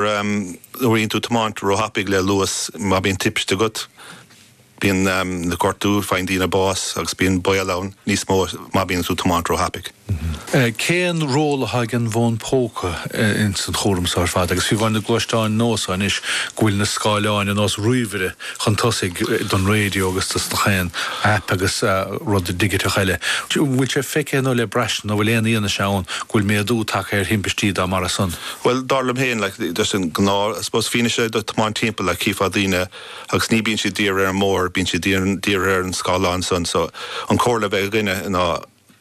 Nuair a bhíonn tú ag tiomáint ró-thapaidh le luas, má bhíonn timpiste agat, bíonn gortú, faigheann daoine bás agus bíonn baol ann níos mó má bhíonn tú ag tiomáint ró-thapaidh. Cén ról atá ag an bhfón póca ins an chúram so ar fad agus fiú amháin na gluaisteáin nua so anois go bhfuil na scáileáin ar nós ríomhaire chun tosaigh don raidio agus dos na gach aon aip agus rud digiteach eile. An bhfuil sé feicthe nó le braistint nó an bhfuil aon fhianaise ann go bhfuil méadú tagtha ar thimpistí dá mbarr san? Bhuel, dar liom féin, like, díreach an gnáth, I suppose, fianaise, do thiomáint timpeall, like, chífeá daoine agus ní bíonn siad dírithe ar an mbóthar, bíonn siad dírithe ar an scáileán san, so, an comhairle a bheadh againne ná,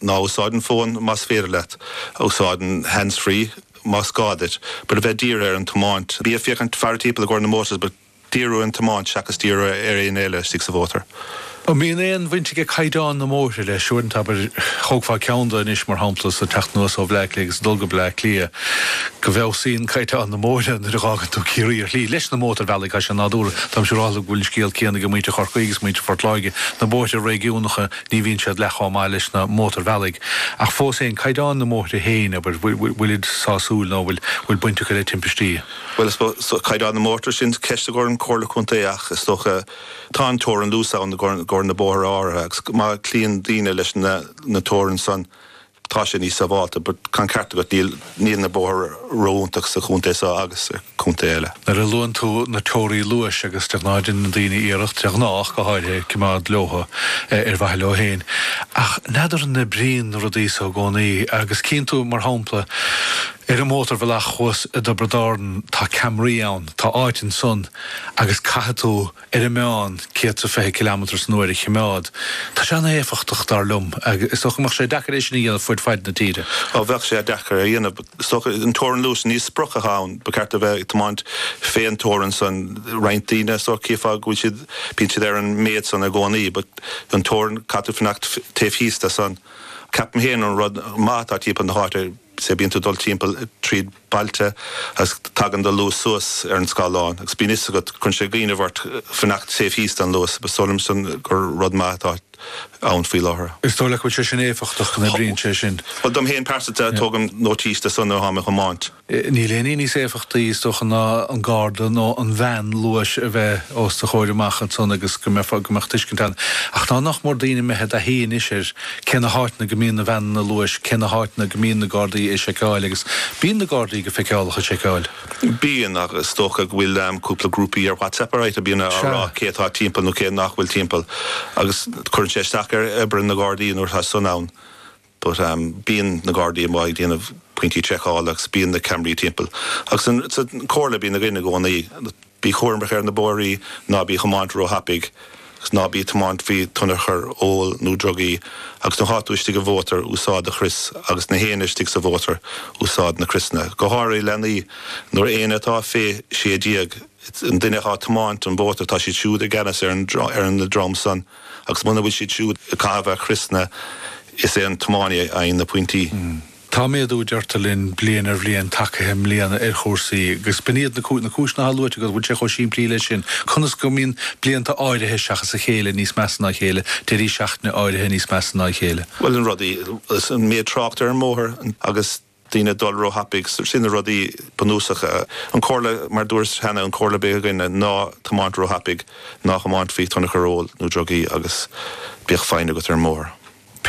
ná úsáid an fón más féidir leat, úsáid an hands-free más gá duit, but bí dírithe ar an tiomáint, bí ag féachaint, faire timpeall i gcomhair na motors, but. díriú ar an tiomáint seachas díriú ar aon ní eile istigh sa mhótar. An mbíonn aon bhaint ag caighdeán na mbóithre leis? Uaireanta, abair, tóg faoi ndeara anois, mar shampla, is ag teacht anuas ó Bhleá Cliath agus ag dul go Bleá Cliath, go bhfeabhsaíonn caighdeán na mbóithre nuair a dh'fhágann tú Ciarraí ar shlí, leis na mótarbhealaigh, tá sé nádúrtha. Táimse siúráilte go bhfuil an scéal céanna ag muintir Chorcaí agus muintir Phort Láirge. Na bóithre réigiúnacha, ní bhíonn siad leath chomh maith leis na mótarbhealaigh, ach fós féin, caighdeán na mbóithre féin, abair, bhfuilid sásúil nó an bhfuil baint acu le timpistí? Bhuel, caighdeán na mbóithre sin ceist i gcomhair an Chomhairle Contae ach is dócha tá an teorainn luais ann i gcomhair na bóithre áirithe agus má chloíonn daoine leis na teoranta san tá sé níos sábháilte but tá an ceart agat níl na bóithre ró-iontach sa chontae seo agus i contaetha eile. Nuair a luann tú na teoraí luais agus de ghnáth deineann daoine iarracht, de ghnách, go háirithe, cimeád leotha ar mhaithe leo féin ach n'fheadar an oibríonn na rudaí so i gcónaí agus cíonn tú, mar shampla, Ar an mótarbhealach thuas i dTiobraid Árann tá ceamaraí ann, tá áit ansan agus caithfidh tú ar an meán céad sa fiche cileamatair san uair a chimeád. Tá sé an-éifeachtach dar liom. Is dócha go mbeadh sé deacair é sin a dhéanamh fuaid faid na tíre. Ó bheadh sé deacair a dhéanamh. Is dócha an teorainn luais ní sprioc atá ann. Ba cheart a bheith ag tiomáint fé an teorainn san. Roinnt daoine is dócha chífeá go bhfuil siad, bíonn siad ar an méid san i gcónaí but an teorainn caithfidh tú fanacht taobh thíos de san. Ceapaim féin an rud maith atá timpeall na h-áite, Sea, bíonn tú ag dul timpeall tríd bailte agus tagann do luas suas ar an scáileán agus bíonn 'fhios agat, cuireann sé i gcuimhne ort fanacht taobh thíos den luas. But is dóigh liomsa gur rud maith atá ann faoi láthair. Is dóigh leat go bhfuil sé sin éifeachtach, go n-oibríonn sé sin? Bhuel, dom fhéin pearsanta, tógaim nótís de san nuair atáim ag tiomáint. Níl aon ní níos éifeachtaí, is dócha, ná an garda nó an veain luais a bheith os do chomhair amach ansan agus go mbeifeá, go mbeadh tuiscint ann. Ach nach mór daoine imithe i dtaithí anois ar Cé na háiteanna go mbíonn na veaineanna luais? Cé na háiteanna go mbíonn na Gardaí ag seiceáil? Agus bíonn na Gardaí go feiceálach ag seiceáil? Bíonn, ach is dócha go bhfuil cúpla grúpaí ar WhatsApp ar a mbíonn a rá cé atá timpeall nó cé nach bhfuil timpeall agus cuireann sé isteach ar obair na nGardaí nuair atá san ann. But bíonn na Gardaí amuigh ag déanamh pointí seiceála agus bíonn na ceamaraí timpeall. Agus sí an chomhairle a bhíonn againn i gcónaí. Bí cúramach ar na bóithrí, ná bí ag tiomáint ró-thapaidh, agus ná bí ag tiomáint faoi thionchar óil nó drugaí, agus nuair atá tú istigh i mhótar, úsáid do chrios, agus gach éinne istigh sa mhótar, úsáid na criosanna, go háirithe leanaí, nuair éinne atá fé 16, an duine atá ag tiomáint an mhótair, tá siad siúd i gceannas ar an dream san, agus muna bhfuil siad siúd ag caitheamh a gcriosanna, is é an tiománaí a fhaigheann na pointí. Tá méadú, deirtear linn, bliain ar bhliain, tagtha i mbliana ar chúrsaí, agus b'in iad na cúiseanna atá luaite agat, an bhfuil sé chomh simplí leis sin? Conas go mbíonn blianta áirithe seachas a chéile níos measa ná a chéile, deirí seachtaine áirithe níos measa ná a chéile? Bhuel, na rudaí, an méid trácht ar an mbóthar agus daoine ag dul ró-thapaidh, sin na rudaí bunúsacha. An chomhairle, mar dúrt cheana, an chomhairle a bheadh againn ná ná tiomáin ró-thapaidh, ná tiomáin faoi thionchar óil nó drugaí agus bíodh foighne agat ar an mbóthar.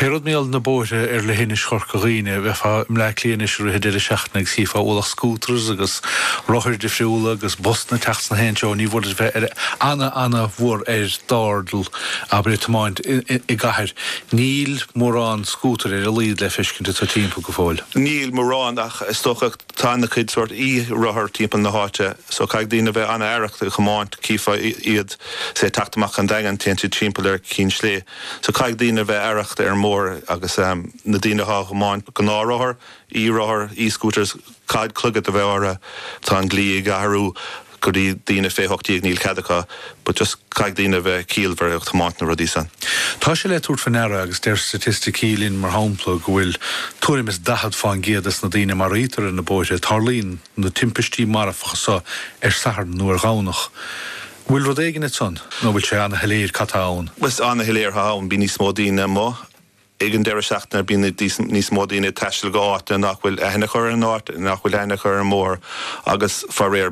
Pé rud i dtaobh na bóithre ar leithinis Chorca Dhuibhne, bheifeá i mBleá Cliath anois i rith an deireadh seachtaine agus chífeá ualach scooters agus rothair difriúla agus busanna ag teacht sna haon treo. Ní foláir duit bheith ar ana ana mhór ar d'airdeall, abair ag tiomáint i gcathair. Níl mórán scútair ar a laghad le feiscint agat timpeall go fóill. Níl mórán ach is dócha tá ana cuid sórt e-rothar timpeall na háite so caithfidh daoine a bheith ana aireach ag tiomáint. Chífeá iad, say, ag teacht amach ón Daingean, téann siad timpeall ar Ceann Sléibhe. So caithfidh daoine a bheith aireach ar an mbóthar agus na daoine athá ag tiomáint gnáth-rothair, e-rothair, e-scooters, caithfidh clogaid a bheith ortha. Tá an dlí ag athrú go dtí daoine fé 18 agus níl cead acu but just caithfidh daoine a bheith ciallmhar ag tiomáint na rudaí san. Tá sé le tabhairt fá ndeara agus deir staitisticí linn mar shampla go bhfuil tuairim is 40 fán gcéad des na daoine a maraítear ar na bóithre, tarlaíonn na timpistí marfacha so ar Satharn nó ar Dhomhnach. Bhfuil rud éigin ait ann nó bhfuil sé ana-shoiléir cad tá ann? Ana-shoiléir cad tá ann? Bíonn níos mó daoine amuigh ag an deireadh seachtaine, bíonn níos mó daoine ag taisteal go áiteanna nach bhfuil aithne acu ar an áit, nach bhfuil aithne acu ar an mbóthar agus faraor,